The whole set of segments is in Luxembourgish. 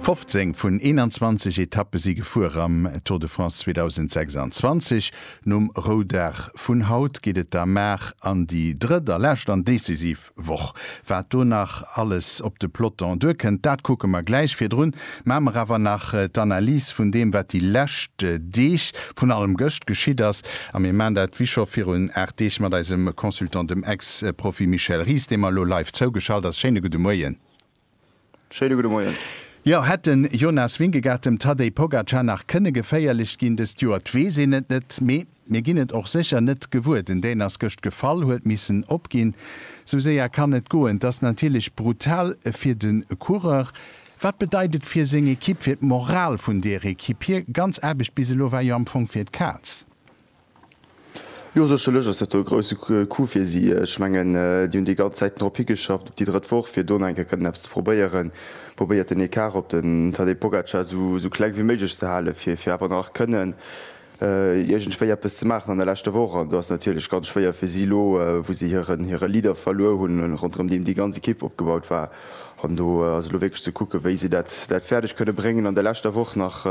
15 vun 21 Etappe si gefuer am Tour de France 2026. Nom Roudag vun haut geet et da mar an déi drëtt a lescht an decisiv Woch. Wat do nach alles op de Peloton duerkënnt, dat kucke mer gläich. Virdrun maache mer awer nach d'Analys vun deem, wat déi lescht Deeg vun allem gëscht geschitt ass, a mir maan dat wéi scho virun 8 Deeg mat eisem Consultant, dem Ex-Profi Michel Ries, dee mer elo live zougeschalt ass. Schéine gudde Moien. Schéine gudde Moien. Jo, hätt den Jonas Vingegaard dem Tadej Pogacar nach kënne geféierlech ginn dëst Joer? 't weess een et net, mee mir ginn et och sécher net gewuer. Den Dän ass gëscht gefall, huet missen opginn. Sou séier kann et goen. 't ass natierlech brutal fir de Coureur. Wat bedeit et fir seng Ekipp, fir d'Moral vun deer Ekipp? Hir ganz Aarbecht bis elo war jo am Fong fir d'Kaz. Jo, sécherlech ass dat e grousse Coup fir si. Ech mengen, déi hunn déi ganz Zäiten drop higeschafft, op déi drëtt Woch, fir do nach eng Kéier kënnen eppes ze probéieren, probéiert den Ecart op den Tadej Pogacar esou kleng wéi méiglech ze halen, fir awer nach kënnen, Iergendwéi eppes ze maachen an der leschter Woch. An do ass et natierlech ganz schwéier fir si elo, wou si hiren, hire Leader verluer hunn, ronderëm deem déi ganz Ekipp opgebaut war. An do ass elo wierklech ze kucken, wéi si dat, dat fäerdeg kënne bréngen an der leschter Woch nach,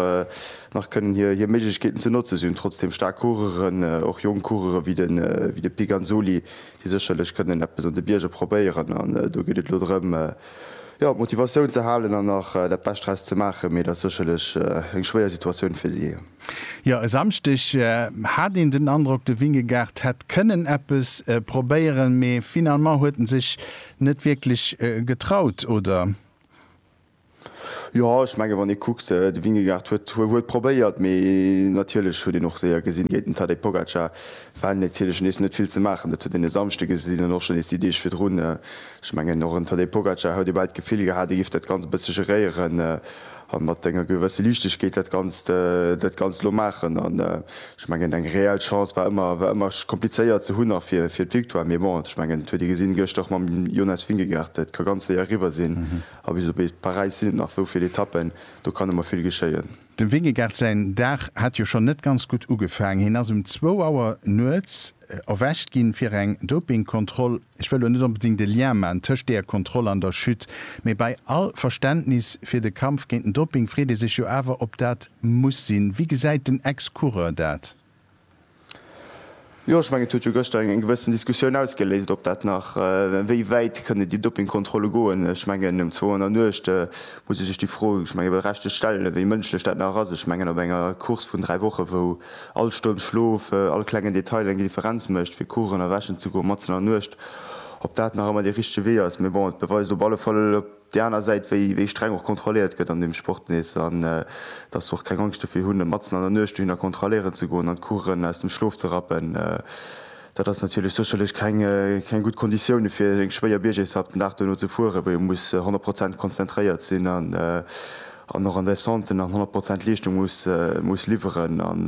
nach kënnen hir, hir Méiglechkeeten ze notze. Si hunn trotzdeem staark Coureuren, och jonk Coureure wéi de, wéi de Piganzoli, déi sécherlech kënnen eppes an de Bierger probéieren. An do geet et elo drëm, jo, d'Motivatioun ze halen an nach dat Bescht draus ze maachen. Mee et ass sécherlech eng schwéier Situatioun fir si. Jo, e Samschdeg hat een den Androck, de Vingegaard hätt kënnen eppes probéieren, mee finalement huet en sech net wierklech getraut, oder? Jo, ech mengen, wann ee kuckt, de Vingegaard huet huet probéiert, mee natierlech huet een och séier gesinn, géint den Tadej Pogacar war natierlech nees net vill ze maachen. Dat huet een e Samschdeg gesinn an och schonn nees déi Deeg virdrun. Ech mengen, och en Tadej Pogacar huet ee bal d'Gefill gehat, e géif dat Ganzt e bësse geréieren An mat enger gewësse Liichtegkeet dat Ganzt, dat Ganzt elo maachen. An ech mengen, eng reell Chance war ëmmer, war ëmmer komplizéiert ze hunn, nach fir, fir d'Victoire. Mee bon, ech mengen, et huet ee gesinn gëscht och mam Jonas Vingegaard, et ka ganz séier eriwwer sinn. A bis op bis Paräis sinn et nach esou vill Etappen, do kann ëmmer vill geschéien. Dem Vingegaard säin Dag hat jo schonn net ganz gutt ugefaangen. Hien ass um zwou Auer nuets erwächt ginn, fir eng Dopingkontroll. Ech wëll elo net onbedéngt e Lien maachen tëscht deeër Kontroll an der Chute, mee bei all Verständnis fir de Kampf géint den Doping freet ee sech jo awer, ob dat muss sinn. Wéi gesäit den Ex-Coureur dat? Jo, ech mengen, et huet jo gëschter eng gewëssen Diskussioun ausgeléist, ob dat nach, wéi wäit kënnen déi Dopingkontrolle goen. Ech mengen, um 208 muss ee sech déi Fro, ech mengen, berechtegt stellen, wéi mënschlech dat nach ass. Ech mengen, op enger Course vun dräi Wochen, wou All Stonn Schlof, all klengen Detail eng Differenz mécht, fir kuchen a wäschen ze goen matzen an der Nuecht. Ob dat nach ëmmer dee richtege Wee ass? Mee bon, et beweist op alle Fall op där aner Säit, wéi streng och kontrolléiert gëtt an deem Sport nees an dass se och keng Angscht dofir hunn, matzen an der Nuecht dohinner kontrolléieren ze goen an d'Kuchen aus dem Schlof ze rappen. Dat ass natierlech sécherlech keng gutt Konditioune fir eng schwéier Biergetapp den Dag duerno ze fueren, wou ee muss 100 Prozent konzentréiert sinn an och an Descenten nach 100 Prozent Leeschtung muss liwweren. An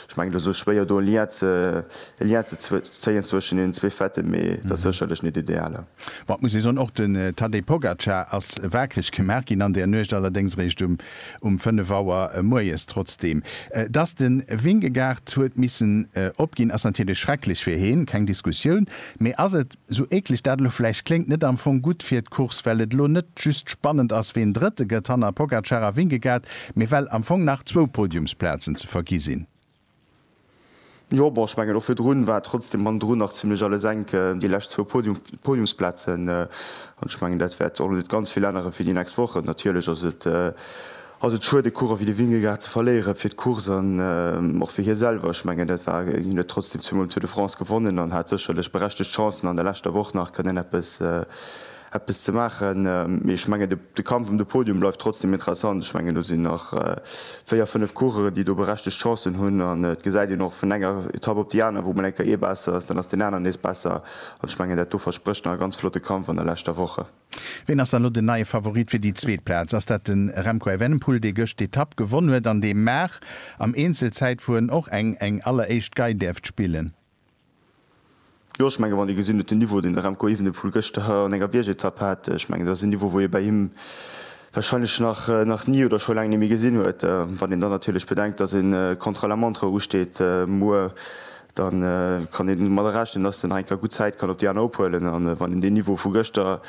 ech mengen, et ass elo schwéier do e Lien ze zéien zwëschen deenen zwee Fêten, mee et ass sécherlech net ideal. Bon, et muss ee soen, och den Tadej Pogacar ass waakreg gemaach ginn an där Nuecht, allerdéngs eréischt um um 5 Auer moies trotzdeem. Dass de Vingegaard huet missen opginn, ass natierlech schrecklech fir heen, keng Diskussioun. Mee ass et, sou eekleg dat elo vläicht kléngt, net am Fong gutt fir d'Course, well et elo net just spannend ass, ween Drëtte gëtt hanner Pogacar a Vingegaard, mee well am Fong nach zwou Podiumsplazen ze vergi sinn? Jo, bon, ech mengen, och virdrun war trotzdem mannendrun nach zimlech alles enk, déi lescht zwou Podiumsplazen. An ech mengen, dat wäert och net ganz vill ännere fir déi nächst Wochen. Natierlech ass et, ass et schued, e Coureur wéi de Vingegaard ze verléiere fir d'Course an och fir hie selwer. Ech mengen, dat war, hien huet trotzdem zweemol den Tour de France gewonnen an hat sécherlech berechtegt Chancen, an der leschter Woch nach kënnen eppes, eppes ze maachen. Mee ech mengen, de Kampf ëm de Podium bleift trotzdeem interessant. Ech mengen, do sinn nach véier, fënnef Coureuren, déi do berechtegt Chancen hunn. An et gesäit een och vun enger Etapp op déi aner, wou mol eng Kéier ee besser ass, dann ass deen aneren nees besser. An ech mengen, dat do versprécht nach e ganz flotte Kampf an der leschter Woche. Ween ass dann elo den neie Favorit fir déi zweet Plaz? Ass dat de Remco Evenepoel, dee gëscht d'Etapp gewonn huet an dee mar am Eenzelzäitfueren och eng eng alleréischt Gei däerft spillen? Jo, ech menge wann ee gesinn huet den Niveau, deen de Remco Evenepoel gëschter an enger Biergetapp hat, ech mengen dat ass en Niveau, wou ee bei him warscheinlech nach nach ni oder scho laang net méi gesinn huet. Wann een dann natierlech bedenkt, datt e Contra la Montre usteet muer, da kann een domadder rechnen, datt den Heinka gutt Zäit kann op déi aner ophuelen. A wann een deen Niveau vu gëschter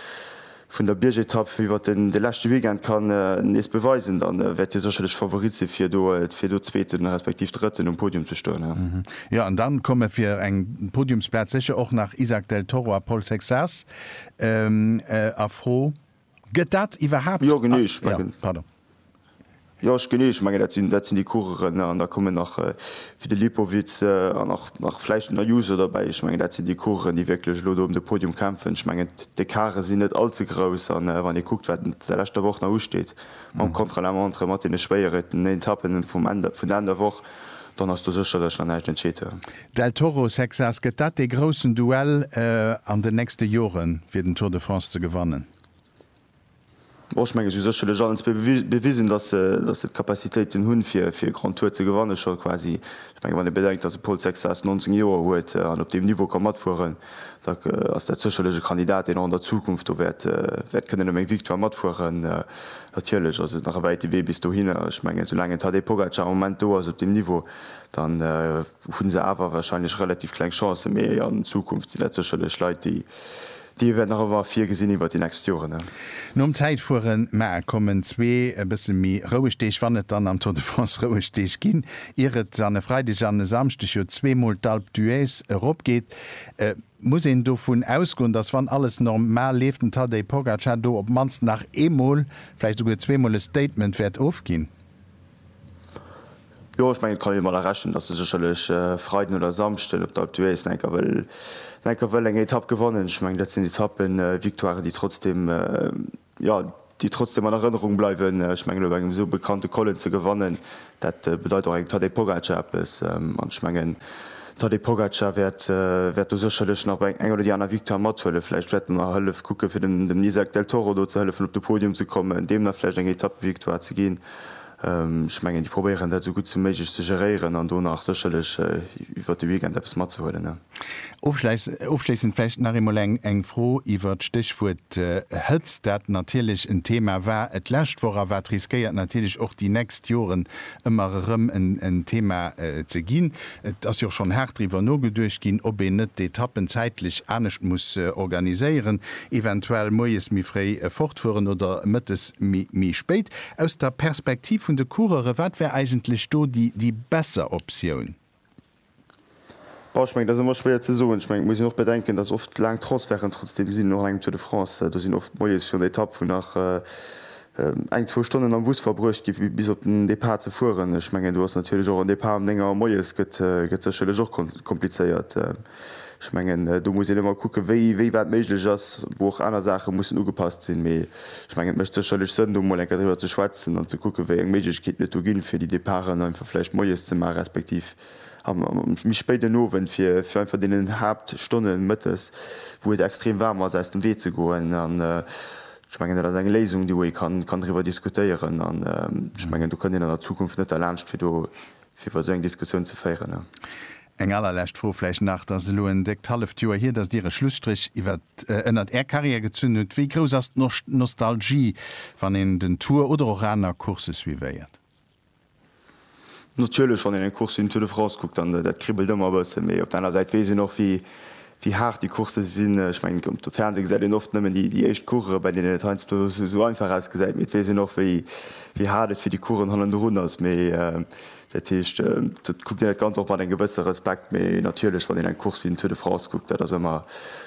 vun der Biergetapp iwwert de leschte Weekend kann nees beweisen, da wäert hie sécherlech Favorit sinn, fir do Zweeten, respektiv Drëtten um Podium ze stoen. Jo, an dann komme fir eng Podiumsplaz sécher och nach Izack Del Toro a Paul Sexas a Fro. Gëtt dat iwwerhaapt. Jo, genee. Jo, genee. Ech mengen, dat sinn, dat sinn déi Coureuren. An da kommen nach wéi de Lipowitz an och nach vläicht den Ayuso derbäi. Ech mengen, dat sinn déi Coureuren, déi wierklech elo do ëm de Podium kämpfen. Ech mengen, d'Ecarte sinn net all ze grouss. A wann ee kuckt, wat der leschter Woch nach usteet mam Contre-la-montre, mat deene schwéieren Etappen vum Enn, vun der Enn der Woch, dann ass do sécherlech nach näischt entscheet. Del Toro, Sexas, Gëtt dat dee groussen Duell an den nächste Joren, fir den Tour de France ze gewannen? Ech menge si hu sécherlech allen zwee bewisen, datt se d'Capacitéiten hunn, fir e Grand Tour ze gewannen, scho quasi. Ech menge wann ee bedenkt, datt e Paul Sexas 19 Joer huet an op deem Niveau ka matfueren, da ass dat sécherlech e Kandidat, deen och an der Zukunft do wäert kënnen ëm eng Victoire matfueren. Natierlech ass et nach e wäite Wee bis dohinner. Ech menge soulaang en Tadej Pogacar am Moment do ass op deem Niveau, dann hu se awer warscheinlech relativ kleng Chancen. Mee an Zukunft sinn dat sécherlech Leit, déi Dir wäert nach ewer vir gesinn iwwert déi nächst Joren, ne? Nom Zäitfueren, mä kommen zwee e bësse méi roueg Deeg, wann et dann am Tour de France roueg Deeg ginn, ier et an e Freideg an e Samschdeg jo zweemol d'Alpe d'Huez eropgeet, muss een dovun ausgoen, datt, wann alles nor mal leeft, den Tadej Pogacar do op d'mannst nach eemol, vläicht esouguer zweemol e Statement wäert ofginn. Jo ech mengen et kann een dermat rechnen dass e sécherlech Freiden oder Samschden op der Alpe d'Huez nach enker wëll nach enker wëll eng Etapp gewannen. Ech mengen dat sinn Etappen, Victoiren déi trotzdem jo déi trotzdem an Erënnerung bleiwen. Ech mengen elo bei engem esou bekannte Kollen ze gewannen dat bedeit och engem Tadej Pogacar eppes an ech mengen Tadej Pogacar wäert wäert do sécherlech nach bei eng oder déi aner Victoire mathuelen. Vläicht wäert en nach hëllef kucke fir dem dem Izack Del Toro do ze hëllefen op de Podium ze kommen, deem nach vläicht eng Etappevictoire ze ginn. Ech mengen, déi probéieren dat esou gutt ewéi méiglech ze geréieren an do nach sécherlech iwwert de Weekend eppes matzehuelen. Ofschléissend vläicht nach eemol eng Fro iwwert d'Stéchwuert Hëtzt, dat natierlech en Thema war d'lescht Woch a wat riskéiert natierlech och déi nächst Joren ëmmer erëm en Thema ze ginn. Et ass jo och schonn haart driwwer nogeduecht ginn, ob een net d'Etappen zäitlech anescht muss organiséieren, eventuell moies méi fréi fortfueren oder mëttes méi spéit. Aus der Perspektiv vun de Coureure, wat wär eigentlech do déi besser Optioun? Bon, ech mengen, dat ass ëmmer schwéier ze soen. Ech mengen, et muss een och bedenken, datt oft laang Transferten trotzdeem sinn, och an engem Tour de France. Do sinn oft moies virun der Etapp, wou nach eng, zwou Stonnen am Bus verbruecht gi fir bis op den Depart ze fueren. Ech mengen, do ass natierlech och en Depart ëm néng Auer moies gëtt sécherlech och komplizéiert. Ech mengen, do muss een ëmmer kucken, wéi wéi wat méiglech ass, wou och aner Saache mussen ugepasst sinn. Mee ech mengen, et mécht sécherlech Sënn, do emol eng Kéier driwwer ze schwätzen an ze kucken, wéi eng Méiglechkeeten et do ginn, fir déi Departen einfach vläicht moies ze maachen, respektiv am méi spéiden Owend, fir fir einfach deenen Haaptstonne mëttes, wou et extrem waarm ass, aus dem Wee ze goen. An ech mengen, dat ass eng Léisung, déi wou ee kann kann driwwer diskutéieren. An ech mengen, do kënnt een an der Zukunft net derlaanscht, fir do fir iwwer esou eng Diskussioun ze féieren. A. Eng allerlescht Fro vläicht nach, Et ass elo en déckt halleft Joer hier, datt Dir e Schlusstréch ënnert Är Karriär gezunn hutt. Wéi grouss ass d'Nostalgie, wann een den Tour oder och aner Coursse suivéiert? Natierlech, wann een eng Course wéi den Tour de France kuckt, dann dat kribbelt ëmmer e bësse. Mee op der aner Säit weess een och, wéi wéi haart déi Coursse sinn. Ech mengen, um Fernseh gesäit een oft nëmmen déi éischt Course, bei deenen et heiansdo esou einfach ausgesäit, mee et weess een och, wéi haart et fir déi Coursen hannendrun ass. Mee dat heescht, et kuckt een dat Ganzt och mat engem gewësse Respekt. Mee natierlech, wann een eng Course wéi den Tour de France kuckt, dat ass ëmmer,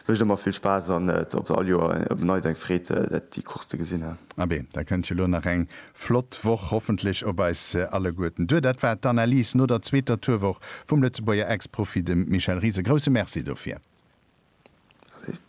mécht ëmmer vill Spaass an et ass all Joer op neits eng Freed, déi Course ze gesinn. Abee, da kënnt jo elo nach eng Flott Woch, hoffentlech op eis alleguerten duer. Dat war d'Analys no der zweeter Tourwoch vum Lëtzebuerger Ex-Profi, dem Michel Ries. E grousse Merci dofir. Allez.